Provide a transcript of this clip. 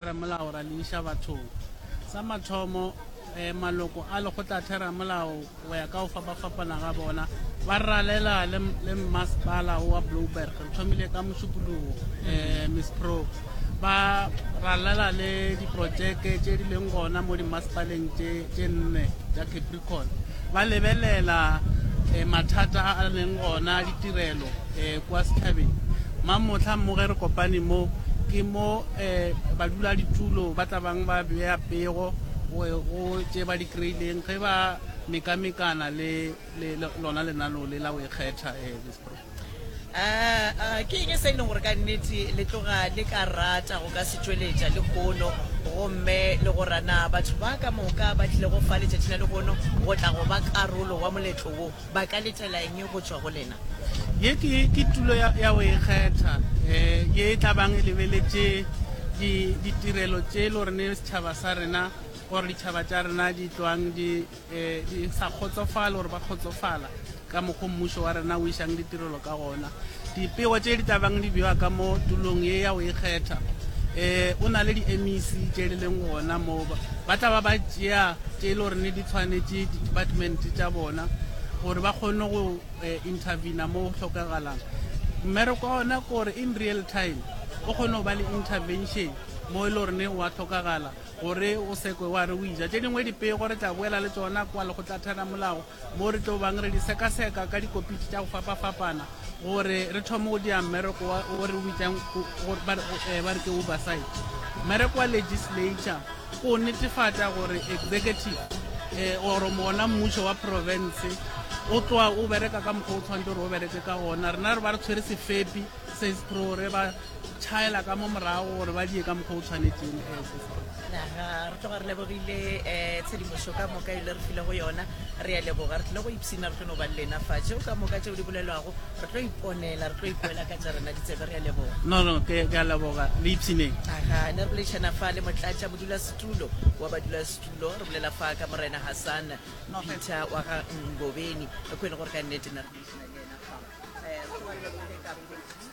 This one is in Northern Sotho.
Theramelao ra le iša bathong. Sa mathomo, maloko a Lekgotlatheramelao go ya ka go fapafapana ga bona ba ralela le mmasepala wa Blouberg. Re thomile ka mošupologo, Miss Pro. Ba ralela le diprotšeke tše di leng gona mo dimmasepaleng tše nne tša Cape ba lebelela mathata a a leng gona a ditirelo kwa setšhabeng. Mang mohla mo ge re kopane mo, ke mo baduladitulo ba tla bang ba bea pego go tše ba di kry-ileng ge ba mekamekana le lona lenaneo le la go ikgetha. A, a, ke eng se e lego gore ka nnete le tloga le ka rata go ka se tšweletša lehono, gomme le go ra na batho ba ka moka ba tlilego fa letšatši la lehono go tla go ba karolo wa moletlo wo ba ka letela eng go tšwa go lena? Ye ke, ke tulo ya, ya go ikgetha, e, ye e tla bang e lebeletše di, ditirelo tše e le gore setšhaba sa rena, goba ditšhaba tša rena di tloang di, di sa kgotsofale gore ba kgotsofala ka mokgwa mmušo wa rena o išang ditirelo ka gona. Dipego tše di tabang di bewa ka mo tulong ye ya go ikgetha. Um o na le di-MEC tše di leng gona moo ba tla ba ba tšea tše e le gore ne di tshwanetše di-department tša bona gore ba kgone go um intervena mo go tlhokagalang. Mmereko wa ona ke gore in real time o kgone go ba le intervention mo e le gore ne wa tlhokagala gore o sekwe wa re o ija tše dingwe dipego re tla boela le tsona kwa lekgotlatheramolao mo re tlo bang re di sekaseka ka dikopiti tša go fapafapana gore re thome go dia mmereko o re o bitsang eh, ba re ke oversight mmereko wa legislature o netefatša gore executive um oro mona mmušo wa province o tloa o bereka ka mokgwa o tshwanetse gore o bereke ka ona rena re ba re tshwere sefepi sesprore ba tšhaela ka mo morago gore ba die ka mokgwa o tshwanetseng naga re tloga re lebogile um tshedimošo ka moka e le re file go yona re ya leboga re tlile go ipshina re tlo no ba le lena fa tšeo ka moka tšeo di bolelwago re tlo iponela re tlo ipoela ka tša rena ditsebe re ya leboga no no ke ke a leboga le ipshineng aga ne re boledišana fa le motlatša modulasetulo wa badulasetulo re bolela fa ka morena hassan peter wa ga ngobeni ko e le gore ka nnete ne re boledišana le ena fa um re tloga re lebogile ka